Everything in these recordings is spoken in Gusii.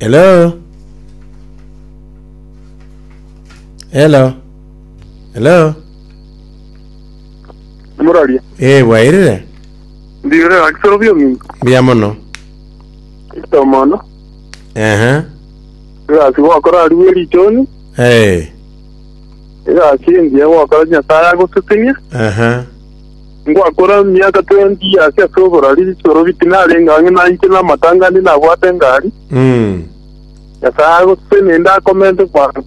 Hello? Hello? Hello? Muraria. Eh, bwairire? Ndire akisoro bio mingi. Mbuya mono. Kristo mono. Ehe. Egasi gwakora ari bwe richoni. Eh, Egasi engiya gwakora Nyasaye agositinia. aha. Ngwakora emiaka twenty years ase oborari, Sorobi tinarenge ang'e nainche namatanga ande nabwate engari. Nyasae agosese naende akomente kwabo.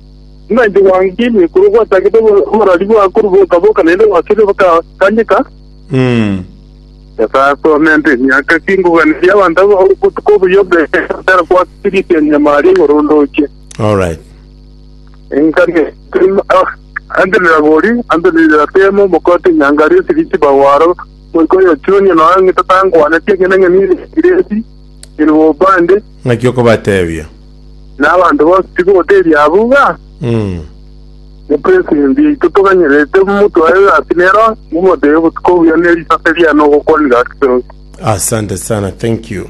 Nainche gwang'etie ekero gwachakete oborari bwao korwa boka-boka naende gwakire bokaganyeka. Nyasae akomente emiaka ki ngoganeria abanto aba obotuko obuya obweka ekero gwakire riseemiamaria igoro ndoche. Alright. Engaki Ande n'Iragori, ande n'Iriratemu, mokote Enyangare esegi chibao aro, moika oyochunye nonya ng'ita tankwaneti, ekiagera ng'a ninde Mokireti, ninde Mobande, Ng'aki okobatebia? na abanto bonsi tigoteria abwo iga, Mopresidenti yaito toganyerete motwae gati nero, momotebie, Obotuko obuya ne risase riane ogokwanire gati toronsi. Asante sana, thank you.